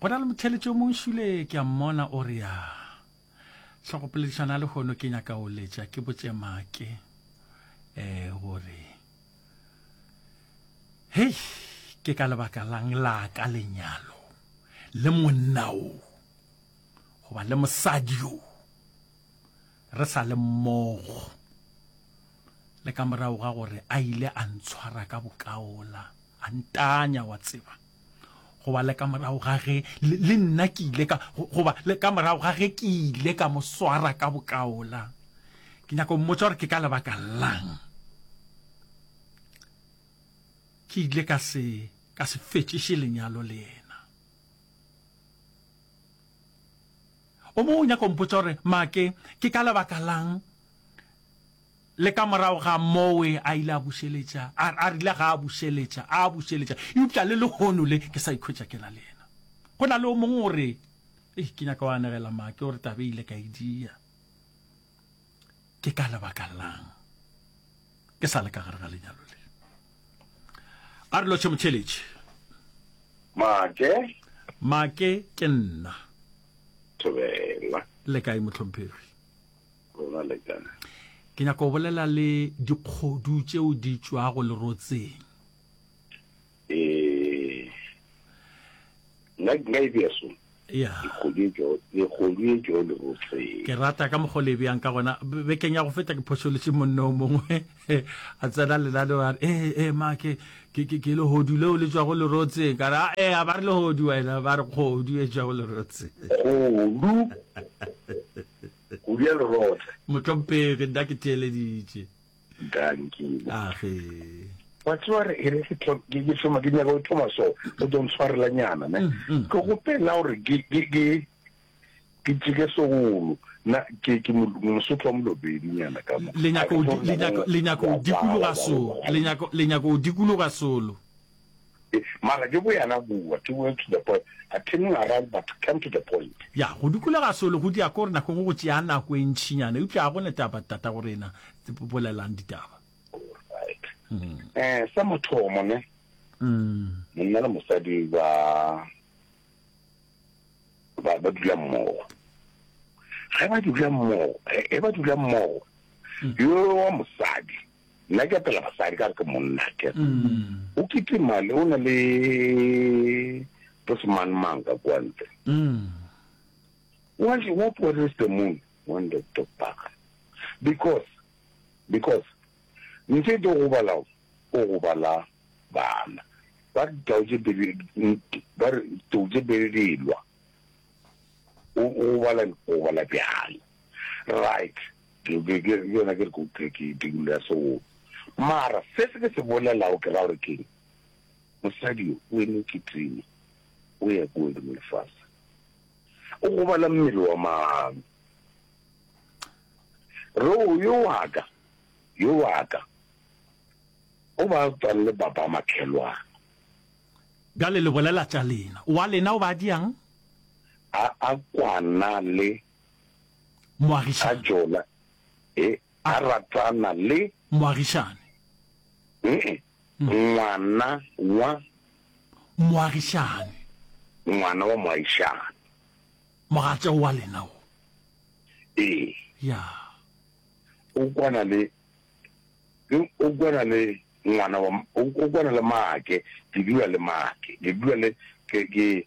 go na le motheletšo mong šule ke a mmona o re ya tlhogopoledišana le gono ke nyaka o letša ke botše make um gore hei ke ka lebaka lang la ka lenyalo le monna o goba le mosadi o re sa le mmogo, le ka morago ga gore a ile a ntshwara ka bokaola, a ntanya, wa tseba, goba le ka morago ga ge le, le nna ke ile ka, goba le ka morago ga ge ke ile ka mo swara ka bokaola. Ke nyaka go mmotsa gore ke ka lebaka lang ke ile ka se, ka se fetšiše lenyalo le yena. O mongwe o nyaka go mpotša gore, Maake, ke ka lebaka la'ng le ka morago ga mowe a ile a bušeletša, a, a rile ga a bušeletša, a bušeletša, eupša le lehono le ke sa ikhwetša ke na le yena? Go na le o mongwe o re, Ei, ke nyaka go anegela Maake, o re taba e ile ka e dia. ke ka lebaka lang ke sa le ka gare ga lenyalo le a re lotshe motheletše make make ke nna thobela le kae motlhomphegi rona le kae ke nyaka go bolela le dikgodu tšeo di tšwago lerotseng eh nna nka e bea so ya ke rata ka mokgwa le bjang ka gona bekeng ya go feta ke phošoletse monne o mongwe a tsena lenaneo a re ee ee ma ke ke lehodu leo le tswago lerotseng ka re a ee a ba re lehodu wena ba re kgodu e tswago lerotse kgodu kgodu ya lerotse motlhompegi nna ke theeleditše Dankile. A ge. Wa tseba re ere ke tlo ke ke tsoma ke nyaka o tsoma so o don't tshwarela nyana ne. Mm, mm. Ke go pela gore ke ke ke ke tsike sogolo na ke ke mosotho wa molobedi nyana ka mo. Le nyaka o le nyaka le nyaka o dikologa so le nyaka le nyaka o dikologa solo. Mara ke bo yana bua to well to the point a turning around but come to the point. Ya go dukulega solo go dia kore nako go go tšea nako e ntšinyana eupša a gona taba tatagorena bolelang ditaba. Alright. Eh sa mathomo ne. Mm. Monna le mosadi ba ba ba dula mmogo. Ge ba dula mmogo, e ba dula mmogo. Yo wa mosadi Nna ke apela basadi ka re ke monna ke. Mm. O kitima le o na le bosemangmang ka kwa ntle. Mm. What what what is the moon when the dog bark? Because because nte do go bala o go bala bana. Ba tau je bele ba tau je bele dilwa. O o bala o bala bjang. Right. Ke, ke, ke, ke yona ke re ko ke, ke tikulo ya seo. Mara, se se ke se bolelago ke ra gore keng? Mosadi yo, o eme kitime, o ya kua godimo lefase. O gobala mmele wa mang? Reo, yo waka, yo waka, o ba tswang le baba makhelwana. Bjale le bolela tša lena. Wa lena o ba diang? A, a kwana le. Moagišane. A jola, he, a ratana le. Moagišane. He-e, ngwana wa. Moagišane. Ngwana wa moagišane. Mogatša wa lena o. Ee. Ya. O kwana le, ke, o kwana le ngwana wa, o kwana le maake, ke dula le maake, ke dula le, ke, ke.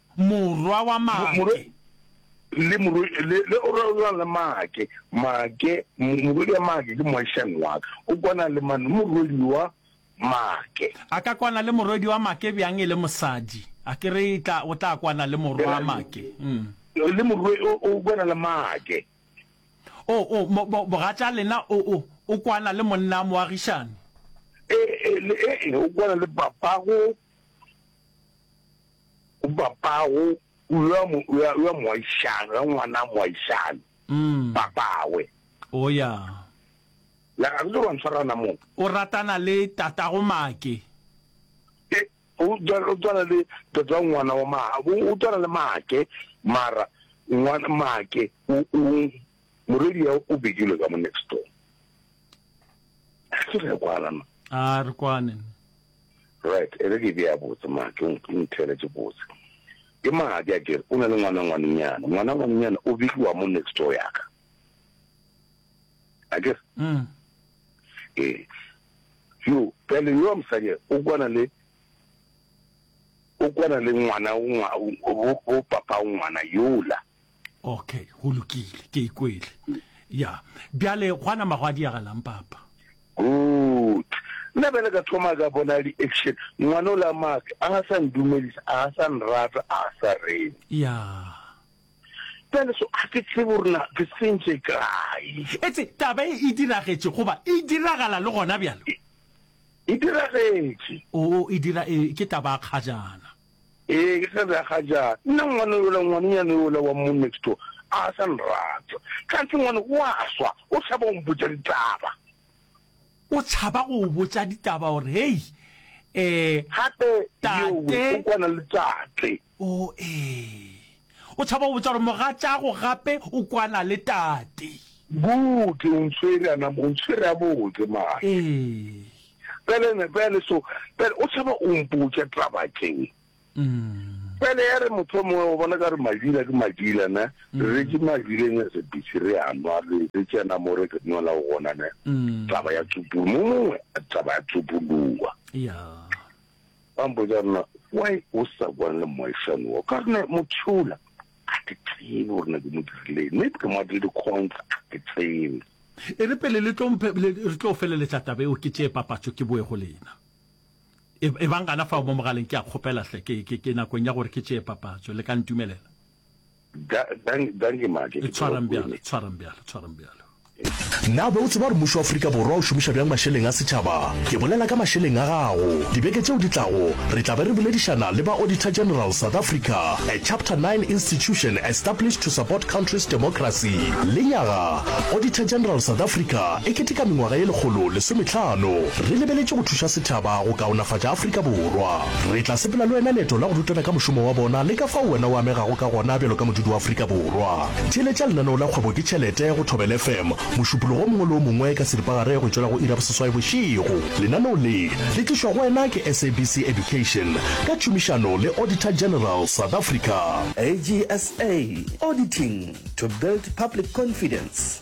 Morwa wa Make. Le morwe, le, le o rwalelwang le Make. Make, mo, morwedi wa Make ke moagišani wa ka. O kwana le mang? Le morwedi wa Make. A ka kwana le morwedi wa Make bjang e le mosadi? A ke re e tla, o tla kwana le morwa wa Make. Mm. Le morwe, o, o kwana le Make. O, o, mo, mo, mogatša lena o, o, o kwana le monna moagišani. Ee, ee, le, ee, o kwana le papago. O papago, o yo a mo, o yo a, o yo a moagišane, o yo a ngwana a moagišane, Mm. papawe. O ya. La ga re wa ntshwara na mo. O ratana le tatago Make. E, o tswa- o tswana le tata ngwana wa ma, o o tswana le Make, mara ngwana Make o o Morwedi ya o bedile ka mo next door. Ke re kwala na. A re kwane. Right, ere ke be ya botse ma ke nthele ke botse. Ke madi a ke o na le ngwana ngwanenyana. Ngwana ngwanenyana o bidiwa mo next door ya ka. A ke mm. Eh. Yo, ka le yo mosadi o kwana le o kwana le ngwana o ngwa o papa ngwana yola. okay go lokile ke ikwele ya bjale gwana mago a diagalang papa good nna bjale ka thoma ka bona di-action ngwana o la make a ga sa ndumelisa a ga sa nrata a ga sa rene ya bjale so a ke tsebo gorena ke sentše kae etse taba e e diragetše goba e diragala le gona bjalo e diragetše o e dira e ke taba a kgajana Ee, ke tla bja ga jaana. Nna ngwana yola, ngwanenyana yola wa mo next door a sa nrata. Kganthe ngwane o a swa, o tšhaba go mpotša ditaba. O tšhaba go go botša ditaba gore, Hei, ee, Gape yowe o kwana le tate. Oo, ee. O tšhaba go botša gore mogatšaago gape o kwana le tate. Good, o ntshwere, a nam, o ntshwere gabotse, mma. Ee. Bjale ne, bjale so, bjale o tšhaba o mpotša taba tše. Bjale ya re mohlomongwe o bona ka re madila ke madila, ne, re retše madileng a se bisi, re a nwa, re, re tsena mo re ke nwela go gona, ne, taba ya tsupulu, mo mongwe taba ya tsupuluwa. Ba mpotša rena, why o sa bua le moagišani wa, ka re ne, Mothula, ga ke tsebe gore ne ke mo dirileng maybe ke mo adile di-coins ga ke tsebe e re pele le tlo mphe- le- re tlo feleletša taba eo ke tšee papatšo ke boe go lena e e bang gana fao mo mogaleng ke a kgopela hle ke ke- ke nakong ya gore ke tšee papatšo le ka ntumelela Da- dang- danke make ke tseba tshwarang bjalo kuene. tshwarang bjalo tshwarang bjalo Na be o tseba gore mmušo wa Afrika Borwa o šomiša bjang mašeleng a setšhaba? Ke bolela ka mašeleng a gago. Dibeke tšeo di tlago, re tla be re boledišana le ba Auditor General South Africa, a Chapter Nine institution established to support country's democracy. Lenyaga, Auditor General South Africa e keteka mengwaga ye lekgolo lesometlhano. Re lebeletše go thuša setšhaba go kaonafatša Afrika Borwa. Re tla sepela le wena leeto la go rutana ka mošomo wa bona le ka fao wena o amegago ka gona bjalo ka modudi wa Afrika Borwa. Theeletša lenaneo la Kgwebo ke Tšhelete go Thobela FM mošupologo o mongwe le o mongwe ka seripagare go tšwela go iri ya boseswai bošego. Lenaneo le, le tlišwa go wena ke SABC Education ka tšhomišano le Auditor General South Africa. AGSA, Auditing to build public confidence.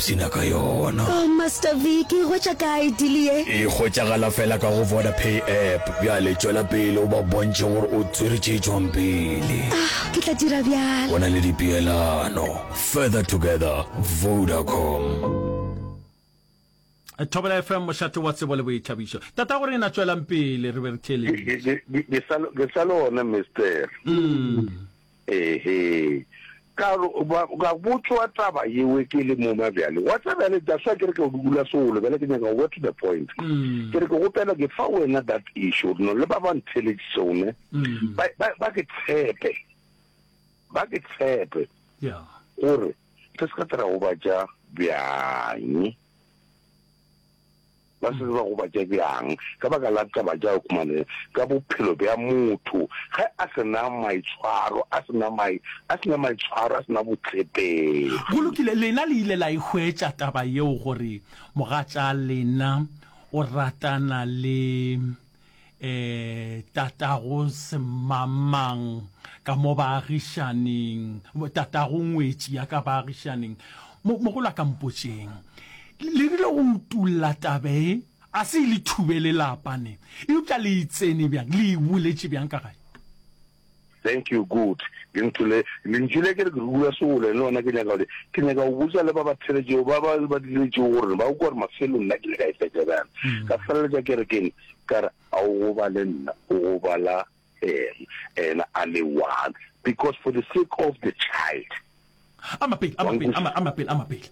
Psina ka yona. Oh Master Vic e hwetša kae deal ye? E hwetšagala fela ka go Vodapay app. Bjale tšwela pele o ba bontšhe gore o tswere tše tšwang pele. Ah, ke tla dira bjalo. Go na le dipeelano. Further together, Vodacom. Thobela FM mošate wa tsebo le boithabišo. Tata gore ena tšwelang pele re be re theeleditše. Ke sa le gona Mister. Mm. Ehe. Ka re, Ba, ka botšwa taba yewe ke le moma bjale. Wa tseba bjale, that's why ke re ke a go dukula solo, bjale ke nyaka go go to the point. Ke re ke kgopela ke fa wena that issue, gore no le ba ba ntheletše sone, ba, ba, ba ke tshepe, ba ke tshepe, gore re se ka tla ra gobatša bjang. Ba se ke ba gobatša bjang ka baka la taba tša Okumane ka bophelo bja motho ge a se na maitshwaro, a se na mai, a se na maitshwaro, a se na Go botshepegi. lokile, lena le ile la e hwetša taba yeo gore mogatša lena o ratana le. eh tatago semamang ka mo baagišaneng tatago ngwetši ya ka baagišaneng mogolo a ka mpotšeng le rile go utulla tabe e a se e le thubele lapa ne eupša le e tsene bjang le e boletše bjang ka gae Thank you good lentho le lentši le ke re ke rula sewole le lona ke nyaka gore ke nyaka go botsa le ba ba theletšego ba ba ba diletšego gore ba kwa gore mafelo nna ke le ka e fetsa bjang mm. ka feleletša ke re ke ne ka re a o go ba le nna o go bala ena ena a le one because for the sake of the child a mapele a mapele a mapele a mapele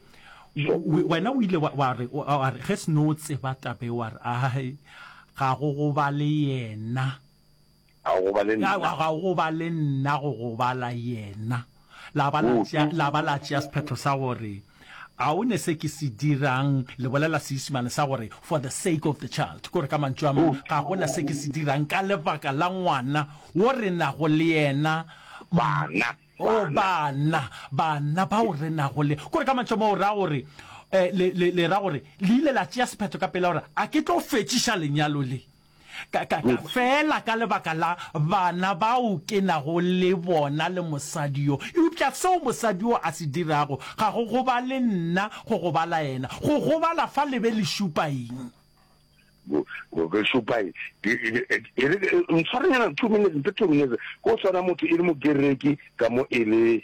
wena o ile wa re wa re ge seno tseba tabe wa re a ga go go ba le yena Ga o gobale nna. Ga, ga o gobale nna, go gobala Yena. La ba la tšea, la ba la tšea sephetho sa gore, A o ne se ke se dirang, le bolela Seisemane sa gore, for the sake of the child, kore ka mantšu a mang, ga go na se ke se dirang ka lebaka la ngwana wo re nago le yena, Bana, o bana. bana, bana bao re nago le. Kore ka mantšu a mang, o ra gore, eh, le, le, le ra gore, le ile la tšea sephetho ka pela gore, A ke tlo fetšiša lenyalo le. Ka, ka, ka, feela ka lebaka la bana bao ke nago le bona le mosadi yo. Eupša seo mosadi yo a se dirago ga go gobale nna, go gobala yena. Go gobala fa le be le šupa eng? Go, go, go šupa eng? Ke, ke, ke, ke re, ntshwarenyana two minutes, nte two minutes, go swana motho e le Mogereki ka mo e le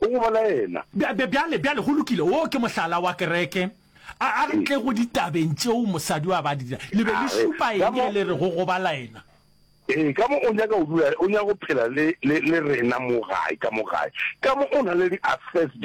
O go bolaela. Bjale, bjale, go lokile, woo ke mohlala wa kereke. A, a re tle go ditabeng tšeo mosadi wa ba di dira. Le be le šupa eng ge le re go go balaena? Ee, ka mo o nyaka go dula, o nyaka go phela le, le, le rena mo gae, ka mo gae, ka mo o na le di-affairs tšeo.